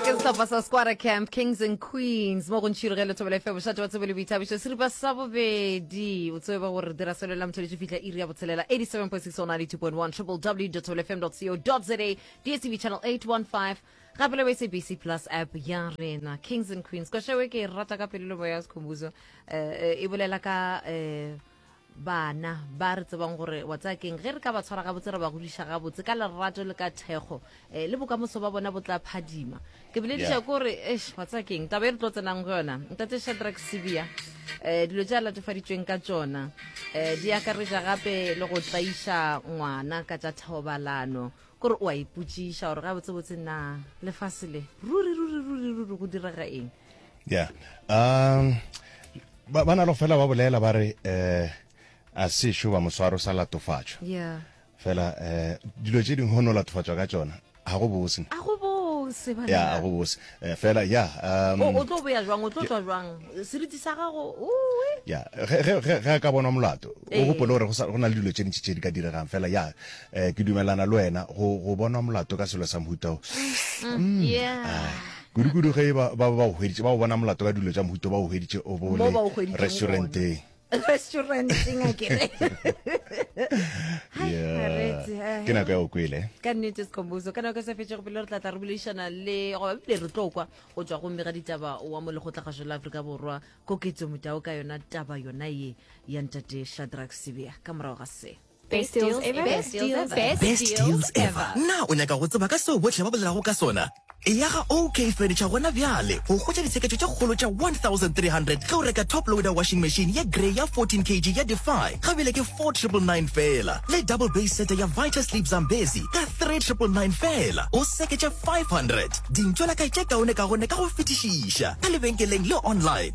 ke sehlopha sa squara camp kings and queens mo go ntšhiro ge lethobelo efe bošate ba tsebo le boithabišo seripa sa bobedi o tsebe ba gore dira selo la motho le tso fitlha iri ya botshelela 87.6 or 92.1 www tobelefm co za dstv channel 815 gape le ba sabc plus app ya rena kings and queens kwashewe ke e rata ka pelelo moya sekhombuzo um e bolela ka um bana ba re tsebang gore wa tsaya keng ge re ka ba tshwara gabotse re ba godiša gabotse ka lerato le ka thekgo um le bokamoso ba bona bo tla phadima ke bolediša ko gore esh wa tsaya keng taba e re tlo tsenang go yona ntate shadrack sebia um dilo tse a latofaditsweng ka tsona um di akaretša gape le go tlaiša ngwana ka tša thobalano Ke gore o a ipotšiša gore gabotsebotse na lefase le ruri ruri ruri ruri go direga eng. ya um ba ba na lo fela ba bolela ba re eh a se šo ba moswaro sa latofatšwa ya fela eh dilo tše dingwe go no latofatšwa ka tšona ga go bose a go bose ya ga banna go bose Eh, fela ya um, o tlo boya jwang o tlo tswa jwang seriti sa gago ya ge a ka bonwa molato o ee. gopole gore go na le dilo tše ntši tše di ka diregang fela ya um ke dumelana le wena go bonwa molato ka selo sa mohutao mm, mm, ah, kudu-kudu ge ba ba go bona molato ka dilo tša mohuto ba o hweditše o bole restauranteng restauranteng a kere eh. ke nako ya o kwele ka nnete sekomboso ka nako e sa fetšego pele re tlatla re boledišana le goba bile re tlo kwa go tswa gomme ga ditaba wa mo lekgotlagašo la aforika borwa koketso motao ka yona taba yona ye ya ntate shadrack sebea ka morago ga se Best deals ever. Best deals ever. Best deals ever. Na o nyaka go tseba ka seo bohle ba bolelago ka sona? Eya ga OK Furniture gona bjale go hwetša ditsheketšo tše kgolo tša 1300 ge o reka top loader washing machine ye grey ya 14 kg ya Defy ka bjale ke 4999 feela le double base sete ya Vita Sleep Zambezi ka 3999 feela o seketše 500 dintšwela kae tše kaone kaone ka go fetišiša ka lebenkeleng le online.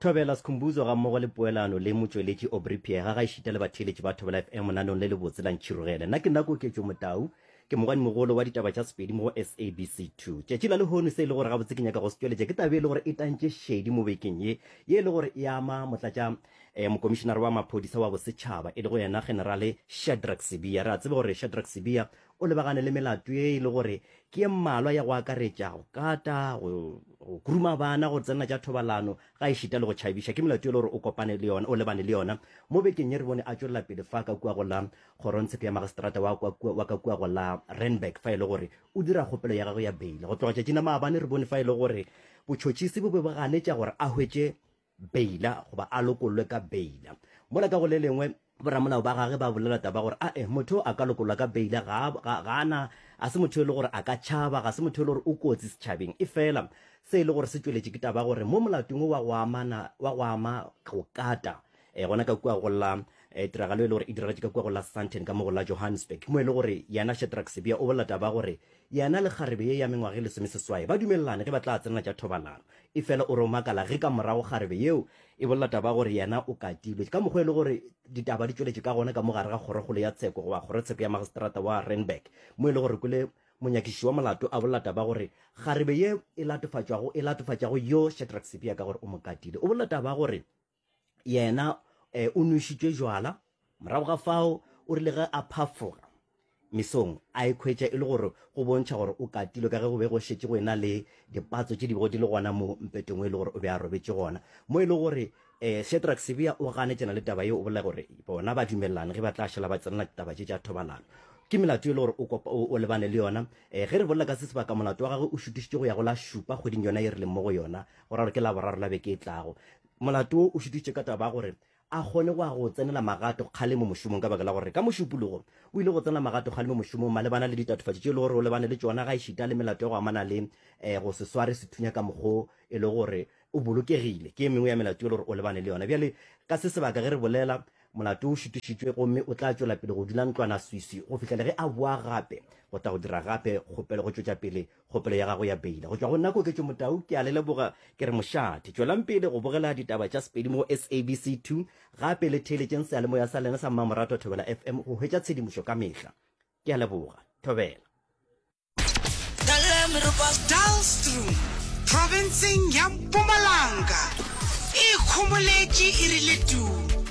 Thobela Sikhumbuzo gammogo le poelano le motšweletši Aubrey Pheega ga ešita le batheeletši ba Thobela FM lenaneong le lebotse la Ntšhirogele. Nna ke nna Koketšo Motau, ke mogwanimogolo wa ditaba tša Sepedi mo go SABC 2. Tšatši la lehono se e le gore gabotse ke nyaka go se tšweletša ke taba e le gore e tantše šedi mo bekeng ye ye e le gore e ama motlatša eh, mokomišenare wa maphodisa wa bosetšhaba e le go yena generale Shadrack Sibiya. Re a tseba gore Shadrack Sibiya o lebagane le melato ye e le gore ke ye mmalwa ya go akaretša go kata go kuruma bana go tsenela tša thobalano ga e šita le go tšhabiša ke melato ye e le gore o kopane le yona o lebane le yona mo bekeng ye re bone a tšwelela pele fa ka kua go la kgorontshepe ya magistrata wa ka kua go la renberg fa e le gore o dira kgopelo ya gagwe ya beile go tloga tšatšina maabane re bone fa e le gore botšhotšhisi bo be bo ganetša gore a hwetše beila goba a lokollwe ka beila. Mola ka go le lengwe, boramolao ba gage ba bolela taba gore a e motho a ka lokollwa ka beila ga, ga, ga na, ga se motho e le gore a ka tšhaba, ga se motho e le gore o kotsi setšhabeng. Efela se e le gore se tšweletše ke taba gore mo molatong wo wa go amana, wa go ama go kata, e, gona ka kua go la e, tiragalo e le gore e diragatše ka kua go la Sandton ka mo go la Johannesburg, mo e le gore yena Shadrack Sibiya o bolela taba gore Yena le kgarebe ye ya mengwaga e lesomeseswai ba dumelelane ge ba tla tsenela tša thobalano. Efela o re o makala ge ka morago kgarebe yeo e bolela taba ya gore yena o katilwe. Ka mokgwa e le gore ditaba di tšweletše ka gona ka mo gare ga kgorokgolo ya tsheko goba kgorotsheko ya magistrata wa Randburg mo e le gore Kule monyakišiši wa molato a bolela taba ya gore kgarebe ye e latofatšwago e latofatšago yo Shadrack Sibiya ka gore o mo katile. O bolela taba ya gore yena um o nwešitšwe jwala morago ga fao o rile ge a phafoga mesong a e khwetša e le gore go bontšha gore o katile ka ge go be go šetše go ena le dipatso tše di bego di le gona mo mpetong o e le gore o be a robetše gona mo e le gore um eh, shedrack sebea o ganetšana le taba yeo o bolela gore bona ba dumelelane ge ba tla šala ba tsenela ditaba tše tša thobalano ke melato e le gore o lebane le yona um ge re bolela ka se sebaka molato wa gagwe o šutišitše go ya go la šupa kgweding yona e re leng mo go yona o ra gore ke laboraro la beke e tlago molato wo o šutitše ka taba gore a kgone go a go tsenela magato kgale mo mošomong ka baka la gore ka mošupologo o ile go tsena magato kgale mo mošomong malebana le ditatofatši tše e le gore o lebane le tšona ga e šita le melato ya go amana le eh, go se sware sethunya ka mokgo e le gore o bolokegile ke e mengwe ya melato e le gore o lebane le yona bjale ka se sebaka ge re bolela molato o šutišitšwe gomme o tla tšwela pele go dula ntlwana swisi go fihlele ge a boa gape go tla go dira gape kgopelo go tšwetša pele Kgopelo ya gago ya beile go tšwa go nna Koketšo Motau ke a le leboga ke re mošate tšwelang pele go bogela ditaba tša Sepedi mo SABC 2 gape le theeletšeng seyalemoya sa lena sa mmamoratwa Thobela FM go hwetša tshedimošo ka mehla ke a leboga Thobela. Daalstroom profenseng ya Mpumalanga e ikhomoletše e rile tuu.